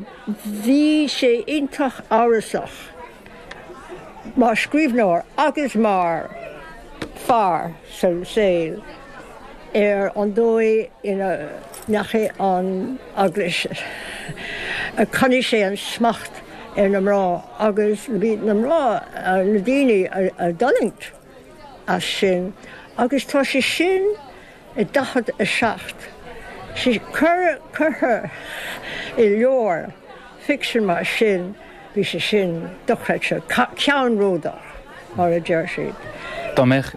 Bhí sé iontach amhrasach mar scríbhneoir agus mar fear sa tsaol ar an dóigh ina ndeachaigh an Eaglais, ar choinnigh sé an smacht ar na mná agus bhí na mná, na daoine a d'fhulaingt as sin agus tá sé sin, i 47. Sin curtha i leabhar ficsin mar sin, bhí sé sin dochreidte, ceannródaíoch mar a deir siad. Dá mbeadh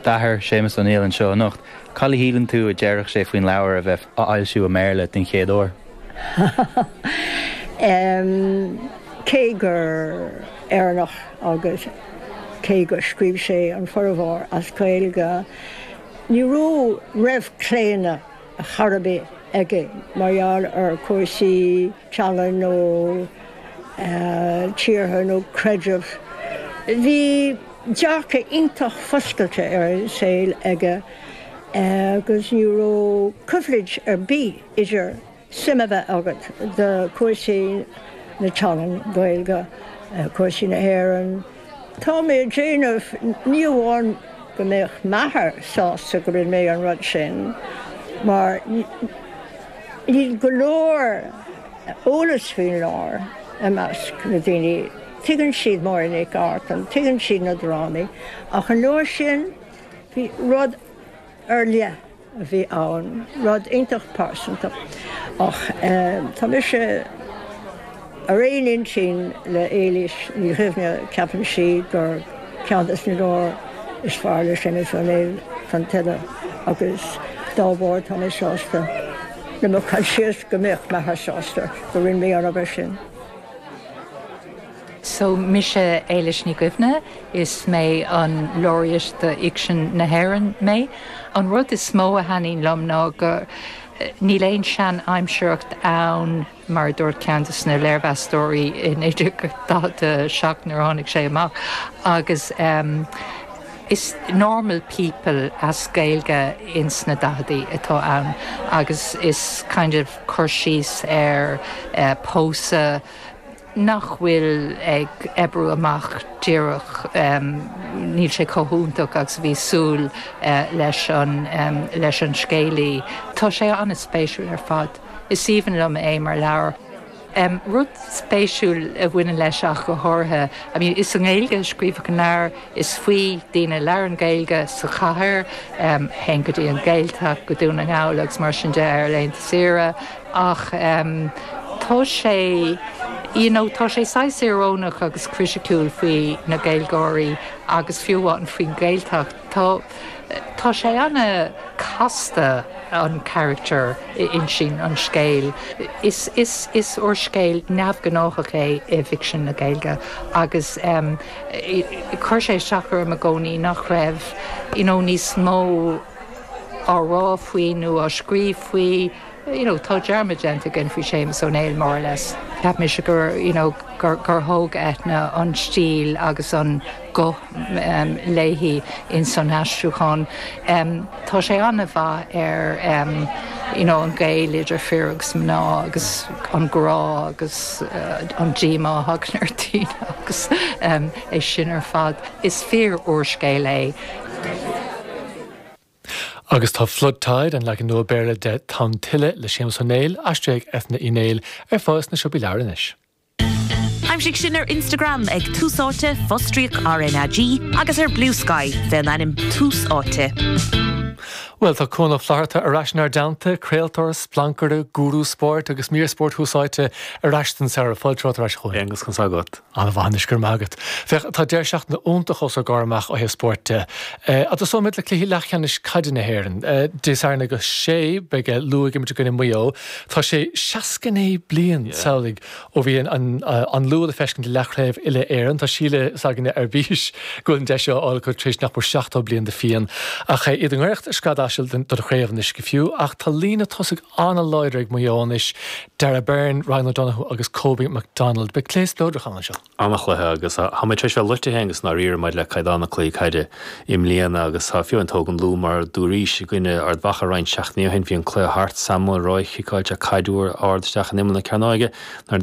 d'athair, Séamus Ó Néill, anseo anocht, cad a shíleann tú a déarfadh sé faoin leabhar a bheith á fhoilsiú i mBéarla den chéad uair? Em, cé gur Éireannach agus cé gur scríobh sé an formhór as Gaeilge, Ní raibh, raibh claonadh ar chor ar bith aige mar gheall ar chúrsaí teangan nó tíortha nó creideamh. Bhí dearcadh iontach foscailte ar an saol aige agus ní raibh coimhlint ar bith idir. suim a bheith agat do chúis na teangan, Gaeilge, cúis na hÉireann. Tá mé ag déanamh, ní amháin go mbeadh m'athair sásta go rinn mé an rud sin, mar níl go leor eolas faoin leabhar i measc na daoine, tuigeann siad Máire Nic Artain, tuigeann siad na drámaí, ach an leabhar sin, ba rud ar leith. a bhí ann, rud iontach pearsanta. Ach tá mise ar aon intinn le Éilís Ní Dhuibhne, ceapann sí gur ceann de na leabhair is fearr le Séamus Ó Néill Tonn Tuile agus dá bharr tá mé sásta le mo choinsias go mbeadh m'athair sásta go rinn mé an obair sin. So mise Éilís Ní Dhuibhne, is mé an Laureate do Fhicsean na hÉireann mé. An rud is mó a thaitníonn liom ná go níl aon sean-aimsearacht ann, mar a dúirt ceann de na léirmheastóirí i 1947 nuair a tháinig sé amach, agus is normal people as Gaeilge ins na daicheadaí atá ann agus is kind of cur síos ar pósadh, nach bhfuil ag oibriú amach díreach, níl sé chomh hiontach agus a bhí súil leis an scéalaí. Tá sé an-spéisiúil ar fad. Is aoibhinn liom é mar leabhar. Rud spéisiúil a bhaineann leis ach go háirithe, b'fhéidir, is i nGaeilge a scríobhadh an leabhar, is faoi daoine a labhrann Gaeilge sa chathair, théann go dtí an Ghaeltacht, go Dún na nGall agus mar sin de ar laethanta saoire. ach tá sé you know tá sé saghas iorónach agus criticiúil faoi na Gaeilgeoirí agus fiú amháin faoin Ghaeltacht. Tá tá sé ana casta an carachtar a insíonn an scéal. Is is is úrscéal neamhghnáthach é i bhficsean na Gaeilge agus em chuir sé isteach orm i gcónaí nach raibh you know níos mó á rá faoi nó á scríobh faoi. you know, tá dearmad déanta againn faoi Séamus Ó Néill more or less. Cheap mise gur, you know, gur, gur thóg Eithne an stíl agus an guth em, léi ins an aistriúchán. Em, tá sé an-mhaith ar em, you know, an gaol idir fir agus mná agus an grá agus uh, an díomá a thagann ar daoine agus em, é sin ar fad. Is fíor-úrscéal é. Agus tá Flood Tide, an leagan nua Béarla de Tonn Tuile le Séamus Ó Néill, aistrithe ag Eithne Uí Néill, ar fáil sna siopaí leabhar anois. Aimsigh sinn ar Instagram ag Tús Áite, fostríoc RnaG, agus ar Bluesky, fén ainm Tús Áite. Bhuel, tá Cuán Ó Flatharta ar ais inár dteannta, craoltóir, splancaire, gúrú spóirt agus mír spóirt Thús Áite ar ais don samhradh. Fáilte romhat ar ais, a Chuáin, agus conas tá agat? An-mhaith anois, go raibh maith agat. Féach, tá deireadh seachtaine iontach os ár gcomhair amach ó thaobh spóirt de. An dtosóimid le cluichí leathcheannais caide na hÉireann? Dé Sathairn ag a sé beidh an Lú ag imirt i gcoinne Maigh Eo. Tá sé seasca naoi bliain, samhlaigh, ó bhí an Lú le feiscint i leathchraobh uile-Éireann. Tá Síle s'againne ar bís go bhfuil an deis seo á fháil acu tar éis nach mór seachtó bliain de phian. Ach iad i ngoireacht scread asail don chraobh anois go fiú. Ach tá líne tosaigh ana láidir ag Maigh Eo anois, Darragh Beirne, Ryan O'Donoghue agus Kobe McDonald. Beidh cluiche spleodrach ann anseo. Ana chluiche agus tá muid tar éis bheith loite fhéin agus i ndáiríre maidir le caighdeán na cluichí caide i mbliana agus tá fiú má thógann Lú mar a dúraís i gcoinne Ard Mhacha roinnt seachtainí ó shin. Bhí an cluiche thart, Sam Mulroy ag ciceáilt caid fhíor-ard isteach in imeall na cearnóige nuair